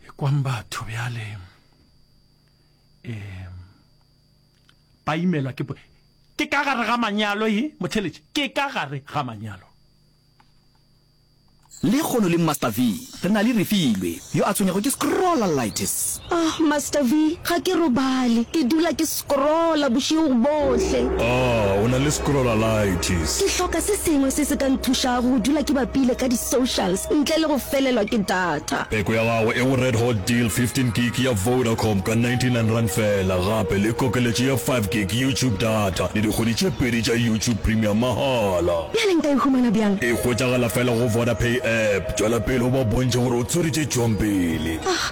ekwang batho bjale um ba imelwa ke ke ka gare ga manyalo e motheletše ke ka gare ga manyalo le kgono le master v re na le refilwe yo a tshwenyago ke scrollalitis Ah, Master V, ga ke robale. Ke dula ke scrolla bošego bohle. Ah, o na le scrollalitis. Ke hloka se sengwe se se ka nthušago go dula ke bapile ka di-socials ntle le go felelwa ke data. Peko ya gago e go Red Hot Deal, 15 gig ya Vodacom ka 99 rand fela, gape le kokeletšo ya 5 gig YouTube data le dikgwedi tše pedi tša YouTube Premium mahala. Bjale nka e humana bjang? E hwetšagala fela go Vodapay app. Tšwela pele o ba bontšhe gore o tsweretse tšong pele. Ah,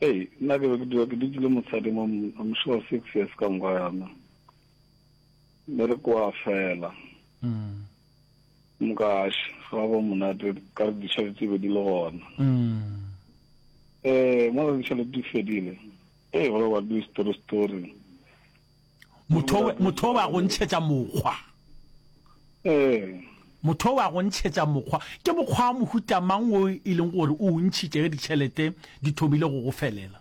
Hei, nna ke be ke dula ke dutše le mosadi mo, I'm sure six years ka moka yana. Be re kwa fela. Mm. Mokash, ga ba monate, ka re dišale tse be di le gona. Mm. Eh, mo re dišale di fedile. Hey, go le wa do story story. motho wa go ntšhetša mokgwa ee. motho wa go ntšhetša mokgwa ke mokgwa wa mohuta mang o e leng gore o ntšhitše ge ditšhelete di thomile go go felela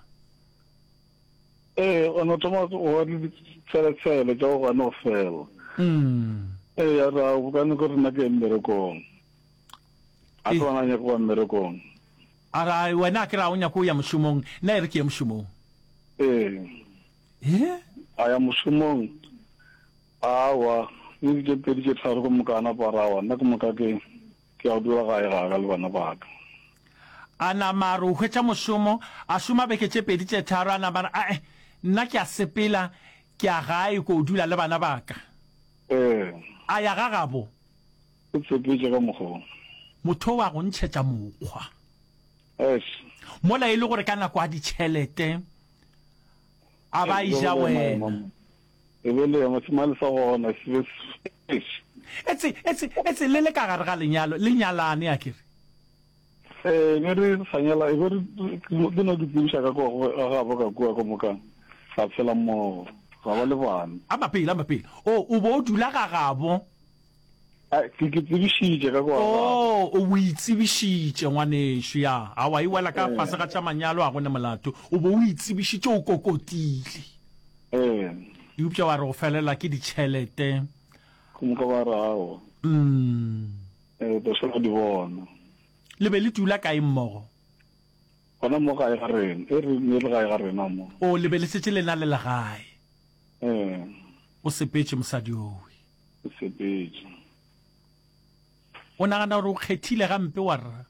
ee o no thoma wa ditšheletshele tša go gane go fela mm. ee ya ra bokane ko rena ke mmerekong a ke bona nyako wa mmerekong a ra wena ke ra o nyako ya mošomong nna e re ke ye mošomong ee He? A ya mošomong? Aowa, le di tše pedi tše tharo go moka a napa a re, Aowa, nna ke moka ke, ke ya go dula gae ga ka le bana ba ka. A nama a re o hwetša mošomo, a šoma beke tše pedi tše tharo, a nama a re, A-e, nna ke ya sepela, ke ya gae ko o dula le bana ba ka. Ee. A ya ga gabo. Ke tshepetše ka mokgwa wo. Motho o a go ntšhetša mokgwa. Eish. Mola e le gore ka nako a ditšhelete a ba e ja wena. E be le yona semale sa gona se be eish. Etse etse etse le le ka gare ga lenyalo le nyalane a kere. Eh be re sa nyala e be re ke no di tsebiša ka kwa ga ba ka kwa ka mokang. Sa tshela mmogo. Ga ba le bana. A mapele a mapele. O o bo o dula ga gabo Ke tsebišitše ka kwa. Oh, o bo itsebišitše ngwanešu ya. A wa iwela ka fase ga tša manyalo a gone molato. O bo o itsebišitše o kokotile. Eh. Eupša wa re o felela ke ditšhelete. Go mo ka ba rago. Mm. Eh, ba swa di bona. Le be le dula kae mmogo? Gona mo gae ga rena. E re ne le gae ga rena mo. O le be le setse le na le legae. Eh. O sepetše mosadi owe. Sepetša. O nagana gore o kgethile gampe, warra?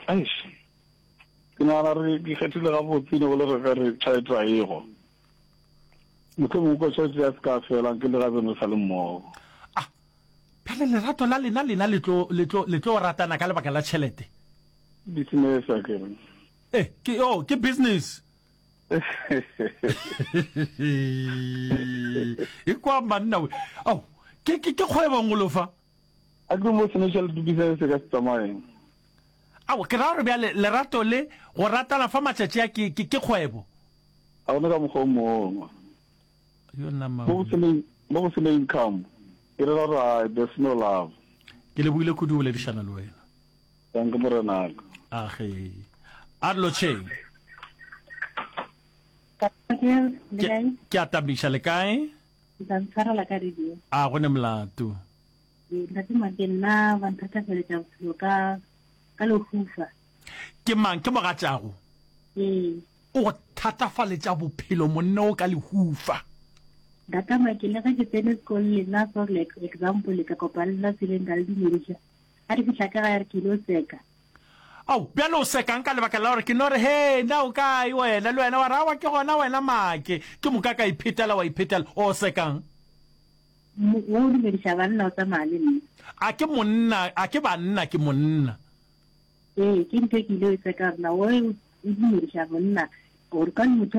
Eish. Ke nagana gore ke kgethile gabotse, ne go le re ka re tšhaetšo a ego. Motho mongwe kwa tšhaetšo ya se ka felang, ke le gabeno sa le mmogo. A, bjale lerato la lena lena le tlo, le tlo, le tlo ratana ka lebaka la tšhelete? Business, a ke re. E, ke, oh, ke business. e kwa manna we ao ke ke ke kgwebong go lofa a ke mo sene tšhelete disa se ka se tsamaeng ao ke ra gore bjale lerato le go ratana fa matšatši a ke ke ke kgwebo a gona ka mokgwa o mongwe yo nama mo go sene mo go sene income ke re ra there's no love ke le buile kudu boledišana le wena Dankie morenaka. Age. A lotšheng. Ke a tamiša le kae? Ntantshwarela ka radio. A go ne molato. Ntate Make nna ba nthatafeletša bophelo ka ka lehufa. Ke mang ke mogatšago? Ee. O thatafaletša bophelo monne o ka lehufa. Ntate Make le ge ke tsene sekolo lena for like example ka kopana le tseleng ka le dumediša. A re fihla ka gae a re, Ke ile o seka. Ao, bjale o sekang ka lebaka la gore ke no re, Hee, na o kae wena? Le wena wa re, Aowa, ke gona wena Make. Ke moka ka iphetela, wa iphetela. O sekang? Wo o dumediša banna o tsamaya le nna. A ke monna, a ke banna, ke monna. Ee, ke ntho e ke ile o e seka gore na wo o dumediša monna gore ka motho,